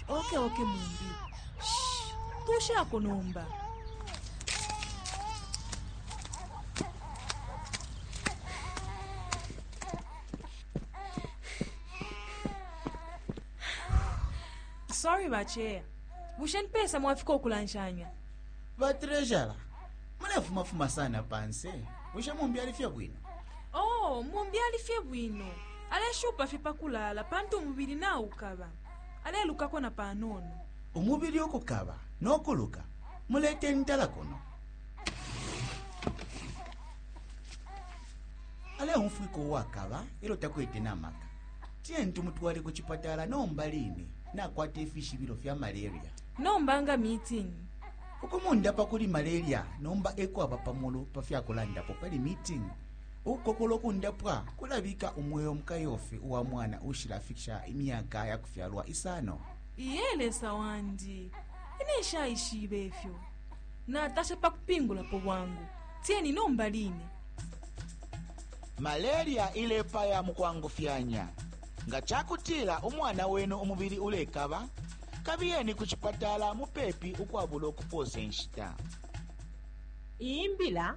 oke oke mumbi tushako nomba sorry bacheya bushe nipesa mwafika okulanshanya batrejara mulefumafuma sana panse bushe mumbi alifye bwino oh mumbi alifye bwino Aleshupa fye pa kulaala pantu umubili naukaba, alelukako na panono. Umubili ukukaba no kuluka, mulete ntala kuno. Aleumfwika uwakaba e lyo takwete na maka. Tiyeni tumutwale ku cipatala nomba line, nakwata ifishibilo fya malaria. Nomba nga meeting. Ukumundapa kuli malaria nomba e kwaba pa mulu pa fya kulandapo pali meeting. Ukukokolo kundapwa kulabika umweo mukayofi uwa mwana ushilafikisha imyaka ya kufyalwa isano. Iye Lesa wandi, ine nshaishibe ifyo. Natasha pa kupingulapo bwangu. Tieni nomba line. Malaria ilepaya mu kwangufyanya. Nga ca kutila umwana wenu umubili ulekaba, kabiyeni ku cipatala mupepi ukwabulo kupoosa inshita. Iyi mbila